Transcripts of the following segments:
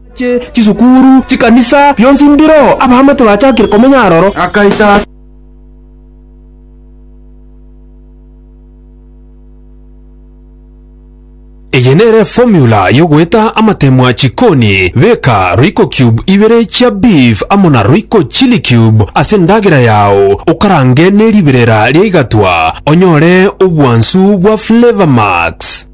Amache, chisukuru, chikanisa, bionsi mbiro, abahama tibachakire komenya aroro. Akaita ase. Eye nere formula yogoeta amatemwa chikoni, beka royco cube ibere chia beef amo na royco chilli cube ase endagera yao okarange neriberera riaigatwa onyore obwansu bwa flavour max.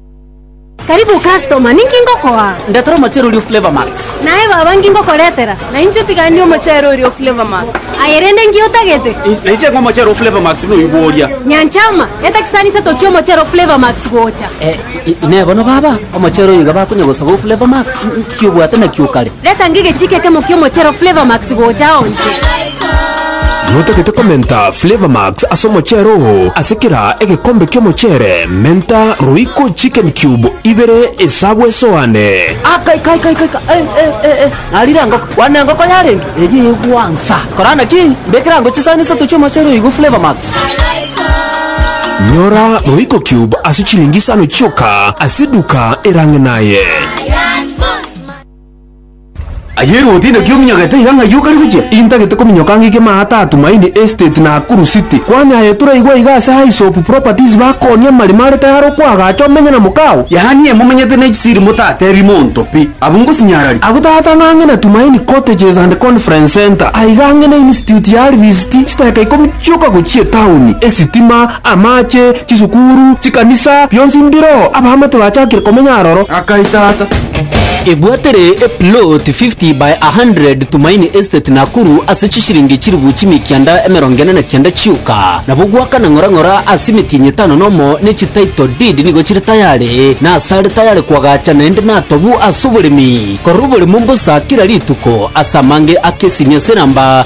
Karibu customer, ninki ngokoa? Ndetera omochere oria o Flavour Max. Naye baba nki ngokoretera? Na inche tigani omochere oria o Flavour Max. Aye rende nki otagete? Na inche ng'a omochere o Flavour Max noigwo oria. Nyanchama, eta kisanisa tochie omochere o Flavour Max gocha. Eh, inee bono baba, omochere oyo iga bakonya gosaba o Flavour Max? Nki obwate nakio kare? Reta ngegechiiki ekemo ki'omochere o Flavour Max gocha ao inche. Notagete komenta Flavour Max ase omocheere oo. Ase kera egekombe ki'omocheere, menta Royco Chicken Cube ibere esabu esoane. Aka ika ika ika ika eh eh eh eh narire engoko bwana engoko yarenge eyio egwansa korana naki mbekera ango chisani isato chi'omochere oyo igo flavour max Nyora Royco Cube ase chilingi isano chioka ase eduka erang'e naye. Aye Ruth inaki ominyogete iga ng'ai okare gochia? Intagete kominyoka ng'ike Maata, Tumaini Estate, Nakuru City. Kwanyaye toraigwa iga ase High Soap Properties bakooni amarimo are tayare okoagacha omenye na mokao. Yaani emomenyete ne chisiri motatebi monto pi. Abwo ngosinyarari. Abwo tata ng'ang'e na Tumaini Cottages and Conference Centre. Aiga ang'e na Institute ya Alvis City, chitaka ikomi chioka gochia etaoni, esitima, Amache, chisukuru, chikanisa, bionsi mbiro abaamate bachakire komenya aroro. Akai tata. Ebwatere a plot 50 by 100 Tumaini Estate Nakuru ase chishiringi chilifu chimia kianda emerongo ene na kianda chioka. Nabo gwakana ng'ora ng'ora ase emetienyi etano nomo ne chi title deed nigo chire tayare na ase are tayare kwagacha naende natobu ase oboremi. Korora oboremo mbosa kera rituko ase amange ake esimia ase enamba